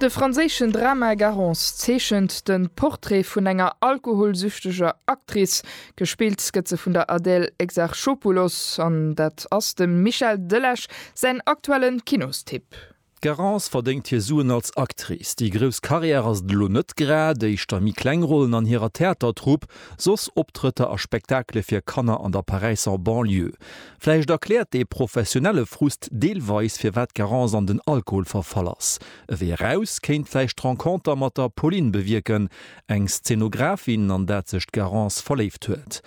De franséischen Drama Garance zeechent de Portrait vun enger alkoholsüchteger Actrice. Gespillt gëtt se vun der Adèle Exarchopoulos an dat ass dem Michel Delage säin aktuelle Kinostipp. D'Garance verdéngt hir Suen als Actrice. Déi grouss Karriär ass et elo net grad, éischter méi kleng Rollen an hirer Theatertrupp, soss Optrëtter a Spektakele fir Kanner an der Paräisser Banlieue. Vläicht erkläert dee professionelle Frust deelweis, firwat d'Garance an den Alkohol verfall ass. E Wee eraus kéint vläicht d'Renconter mat der Pauline bewierken, eng Szenografin, an dat sech d'Garance verléift huet.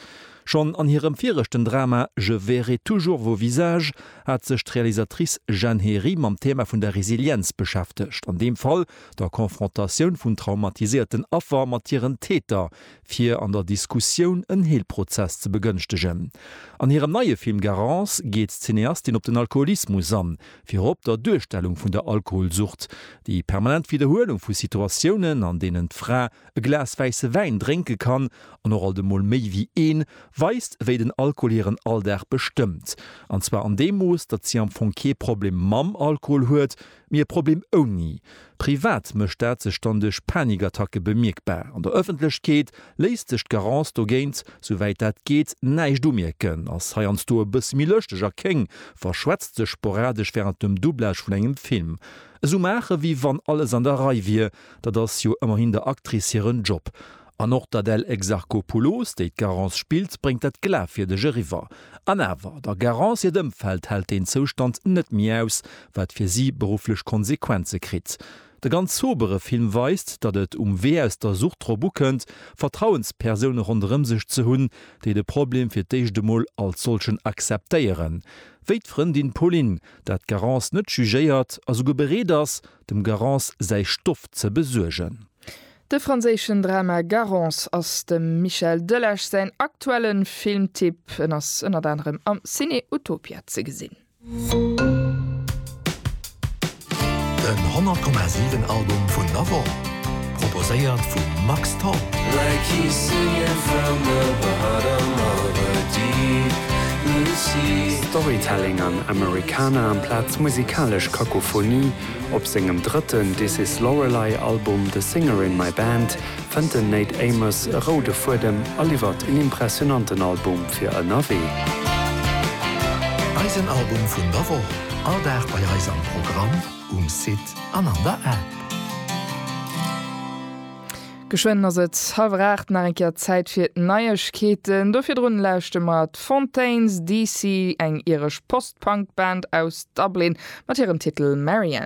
Schonn an hirem viregten Drama Je verrai toujours vos visages hat sech d'Realisatrice Jeanne Hary mam Thema vun der Resilienz beschäftegt, an deem Fall der Konfrontatioun vun traumatiséierten Affer mat hiren Täter, fir an der Diskussioun en Heelprozess ze begënschtegen. An hirem neie Film Garance geet d'Cineastin op den Alkoholismus an, virop der Duerstellung vun der Alkoholsucht, déi permanent Widderhuelung vu Situatiounen, an deenen d'Fra e Glas wäisse Wäin drénke kann, an och alt emol méi wéi een, weist, wéi den Alkohol hiren Alldag bestëmmt. An zwar an deem Mooss, datt si am Fong kee Problem mam Alkohol huet, Mee e Problem ouni. Privat mécht dat sech dann duerch Panikattacke bemierkbar. An der Ëffentlechkeet léisst sech d'Garance dogéint, souwäit dat geet, näischt umierken, ass heiansdo e bësse méi lëschteg a kéng, verschwätzt sech sporadesch wärend dem Doublage vun engem Film. Esou maachen, wéi wann alles an der Rei wier, dat ass jo ëmmerhin der Actrice hiren Job. An och d'Adèle Exarchopoulos, déi d'Garance spillt, bréngt dat Glafwierdeg eriwwer. An awer, der Garance hiert Ëmfeld hält deen Zoustand net méi aus, wat fir si berufflech Konsequenze kritt. De ganz sobere Film weist, datt et um Wee aus der Sucht drop ukënnt, Vertrauenspersoune ronderëm sech ze hunn, déi de Problem fir d'éischt emol als solchen akzeptéieren, wéi d'Frëndin Pauline, dat d'Garance net jugéiert a souguer bereet ass, Dem Garance säi Stoff ze besuergen. De franséischen Drama Garance ass dem Michel Delage säin aktuelle Filmtipp. En ass ënnert anerem am Ciné Utopia ze gesinn. Den 100,7 Album vun der Woch. Proposéiert vu Max Tholl. Like he's singing from the bottom of a deep blue sea. Storytelling an Americana amplaz musikalesch Kakophonie, Op sengem drëtten This Is Lorelei Album The Singer In My Band fënnt den Nate Amos e roude Fuedem a liwwert en impressionanten Album fir ënnerwee. Eisen Album vun der Woch, all Dag bei eis am Programm. Um Site an an der App. Geschwënn ass et halwer 8, nach eng Kéier Zäit fir d'Neiegkeeten. Do virdrun lauschte mer d'Fontaines DC, eng iresch Post-Punk Band aus Dublin mat hirem Titel Marian.